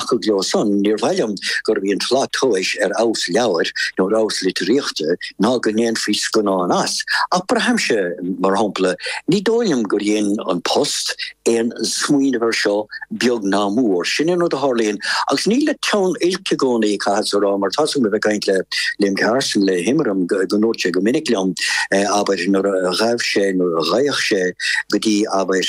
Thiocfadh leo san. Níor mhaith liom gurbh í an tslat tomhais ar fheabhas leabhair nó ar fheabhas litríochta ná go ndéanfaí scannán as, ach braithimse, mar shampla, ní dóigh liom gur dhein An Post aon smaoineamh air seo beag ná mór. Sin an rud a tharlaíonn, agus níl le teann oilc i gcónaí, chaitheas a rá, mar tá súil agam a bheith ag caint le Liam Carson, le hImram, go ndúirt sé go minic liom, abair, nuair a ghabh sé, nuair a ghabhadh sé, go dtí, abair,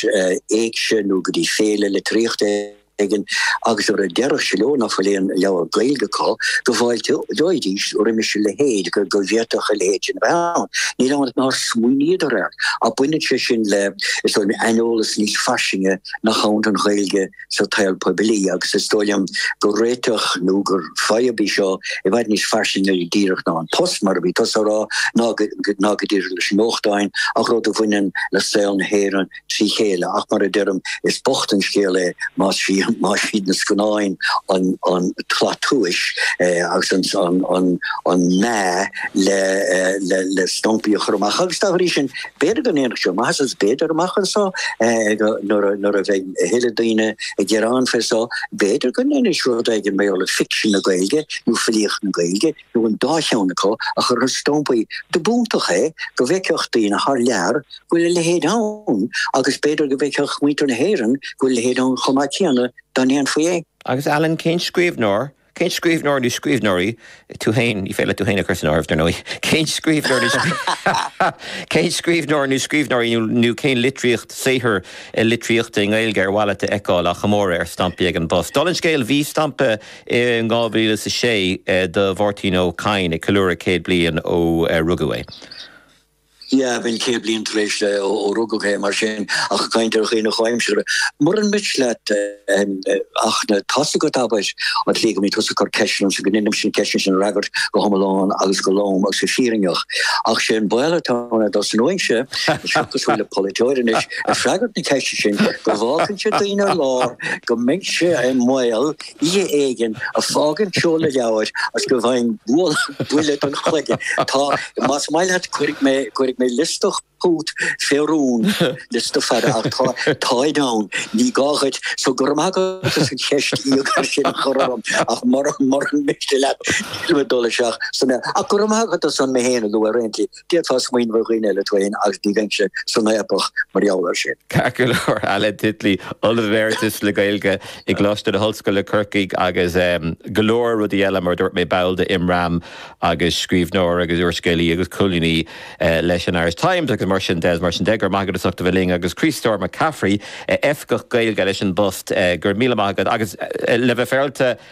éigse nó go dtí féile litríochta ar. éigin agus nuair a déarfadh sé leo nach bhfuil aon leabhar Gaeilge acu, go bhfáilteoidís roimis a leithéid, go bhféadfadh a leithéid sin a bheith ann. Níl ann ach nár smaoiníodar air. Ach baineann sé sin le, is dóigh liom, aineolas níos fairsinge nach ann don Ghaeilge sa tsaol poiblí agus is dóigh liom gur réiteach nó gur fadhb í seo i bhfad níos fairsinge díreach ná an post, mar a bhí tusa á rá, ná go díreach leis na nuachtáin ach rud a bhaineann le saol na hÉireann trí chéile, ach mar a deirim, is bocht an scéal é más iad na scannáin an tslat tomhais agus an meá le stampaí a chur amach. Agus dá bhrí sin, b'fhéidir go ndéanfadh sé maitheas, agus b'fhéidir, amach anseo, nuair a bheidh a thuilleadh daoine ag gearán fé seo, b'fhéidir go ndéanfaidís rud éigin mar gheall ar ficsean na Gaeilge nó filíocht na Gaeilge. nó an dá cheann acu, a chur ar stampaí, dob iontach é go bhfeicfeadh daoine thar lear go bhfuil a leithéid ann, agus b'fhéidir go bhfeicfeadh muintir na hÉireann go bhfuil a leithéid ann chomh maith céanna, dá ndéanfaí é. Agus Alan, cén scríbhneoir, cén scríbhneoir nó scríbhneoirí, tú féin, ní féidir leat tú féin a chur san áireamh, dar ndóigh, cén scríbhneoir nó cén scríbhneoir nó scríbhneoirí nó cén litríocht, saothar litríochta i nGaeilge ar mhaith leat a fheiceáil á chomóradh ar stampaí ag an bPost? Dála an scéil, bhí stampa. In dhá mhíle is a sé do Mháirtín Ó Cadhain ag ceiliúradh céad bliain ó rugadh é. Dheamhan céad bliain tar éis ó rugadh é, mar sin, ach ag caint ar dhaoine comhaimseartha. Muran miste leat ach tá a fhios agat, abair, an tslí go mbíonn tusa ag cur ceisteanna ormsa, go ndéanaimse na ceisteanna sin a fhreagairt go hiomlán agus go lom agus go fírinneach. Ach sé an baol atá ann, dá dtosnóinnse anseo cosúil le polaiteoir anois ag freagairt na ceiste sin, go bhfágfainnse daoine ar lár, go mbeinnse i mbaol, Oíche éigin ag fágaint seoladh leabhair as go bhfaighinn buille don chloigeann. Tá, más maith leat, cuirfidh mé, cuirfidh mé liosta chugat fé rún, liosta fada, ach tá, táid ann, ní gá dhuit, so go raibh maith agat as an cheist íogair sin a chur orm, ach mura, mura miste leat, nílim ag dul isteach ansan, ach go raibh maith agat as mé fhéin a lua ar aon chaoi. D'fhéadfá smaoineamh ar dhaoine eile, tú fhéin agus ní bheinnse san fhaopach mar gheall air sin. Ceart go leor, Alan Titley, Ollamh Emeritus le Gaeilge i gColáiste na hOllscoile, Corcaigh agus go leor rudaí eile, mar a dúirt mé, ball de Imram agus scríbhneoir agus úrscéalaí agus colúnaí leis an Irish Times agus mar sin de, mar sin de. Go raibh maith agat as ucht a bheith linn agus Críostóir Mac Cafraidh, Oifigeach Gaeilge leis an bPost, go raibh míle maith agat agus le bheith féaráilte,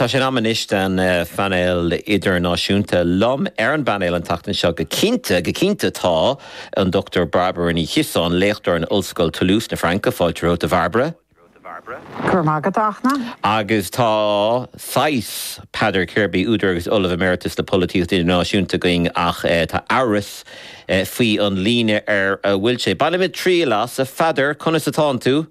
Tá sé in am anois don phainéal idirnáisiúnta. Liom ar an bpainéal an tseachtain seo go cinnte, go cinnte tá an Dr. Barbara Ní Chiosáin, léachtóir in Ollscoil Toulouse na Fraince, fáilte romhat a Bharbara. Go raibh maith agat, a Fhachtna. Agus tá saghas Peadar Kirby, údar agus Ollamh Emeritus le Polaitíocht Idirnáisiúnta againn ach tá amhras faoi an líne ar a bhfuil sé. Bainimid triail as. A Pheadair, conas atánn tú?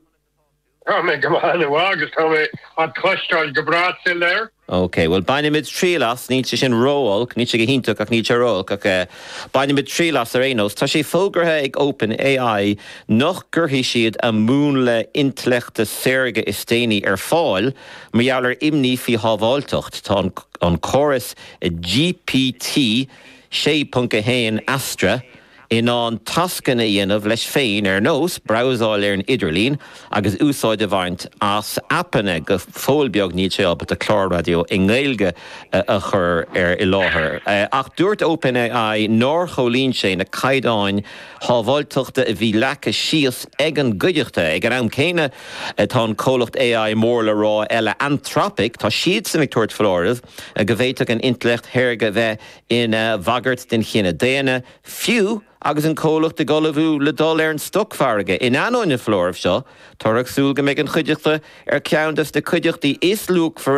Tá mé go maith inniu agus tá mé a' cloisteáil go breá suil air. OK, bhuel bainfimid triail as, níl sé sin ró-olc, níl sé go hiontach ach níl sé ró-olc ach eh bainfimid triail as ar aon nós. Tá sé fógraithe ag Open AI nach gcuirfidh siad a múnla intleachta saorga is déanaí ar fáil mar gheall ar imní faoi shábháilteacht. Tá an córas GPT 6.1 Astra, in ann tascanna a dhéanamh leis féin ar nós brabhsáil ar an idirlíon agus úsáid a bhaint as aipeanna, go fóill beag níl sé ábalta clár raidió i nGaeilge a chur i láthair. Ach dúirt OpenAI nár chomhlíon sé na caighdeáin shábháilteachta a bhí leagtha síos ag an gcuideachta. Ag an am céanna tá an comhlacht AI mór le rá eile Anthropic, tá siadsan ag tabhairt foláirimh go bhféadfadh an intleacht shaorga bheith ina bhagairt den chine daonna, fiú agus an comhlacht ag ullmhú le dul ar an stocmhargadh. In ainneoin an foláirimh seo, táthar ag súil go mbeidh an chuideachta ar cheann des na cuideachtaí is luachmhaire